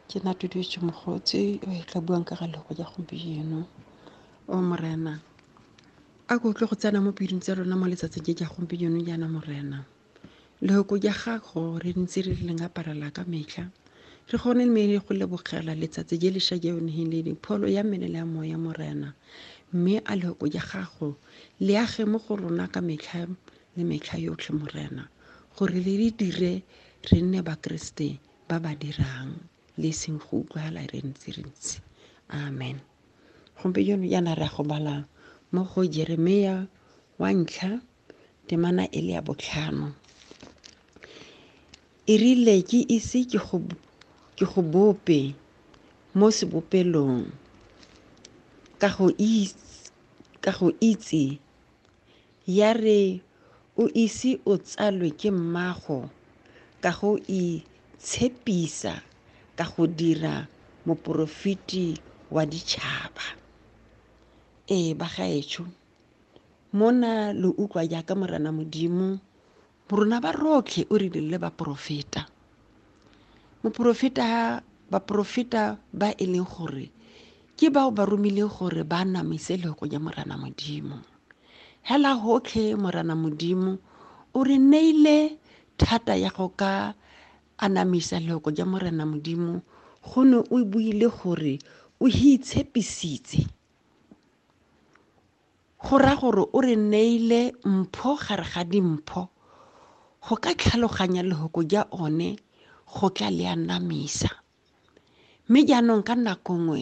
Ke nna Tutuetso Mogotsi o e tla buang ka ga lego ja gompieno. O Morena, a ko tle go tsena mo pelong tsa rona mo letsatsing je ja gompieno jaana Morena. Lehoko ja gago re ntse re leng aparela ka metlha. Re gone mme re go lebogela letsatsi je le sha je o neheng le pholo ya mmele le ya moya Morena. Mme a lehoko ja gago le age mo go rona ka metlha le metlha yotlhe morena gore le re dire re nne bakeresete ba ba dirang le seng go utlwala re ntse re ntse amen gompieno yana re ya go bala mo go jeremia wa ntlha temana e le ya botlhano e rile ke ise ke go ke go bope mo sebopelong ka go itse ka go itse Ya re o ise o tsalwe ke mmago ka go itshepisa ka go dira moporofeti wa ditšhaba. Ee, bagaetsho, mona lo utlwa jaaka Morena Modimo Morona ba rotlhe o re dirile baporofeta. Moporofeta baporofeta ba e leng gore ke bao ba romileng gore ba namise lego ya Morana Modimo. Hela hotlhe Morana Modimo o re neile thata ya go ka anamisa lego ya Morana Modimo go ne o buile gore o hi itshepisitse Go raya gore o re neile mpho gare ga dimpho. Go ka tlhaloganya lehoko ja one go tla le anamisa. Mme jaanong ka nako nngwe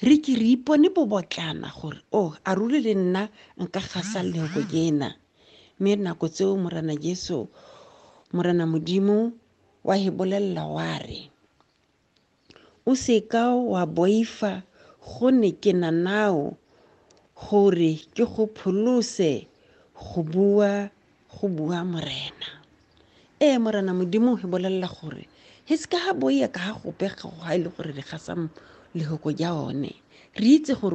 re ke re ipone bobotlana gore o oh, a ruri le nna nka gasa lehoko jena. Mme nako tseo Morena Jesu, Morena Modimo wa he bolelela wa re, O se ka wa boifa gone ke na nao gore ke go pholose go bua go bua morena. Ee morena modimo he bolelela gore he se ka ha boia ka ha gope ga e le gore re gasa lehoko ja one. Re itse gore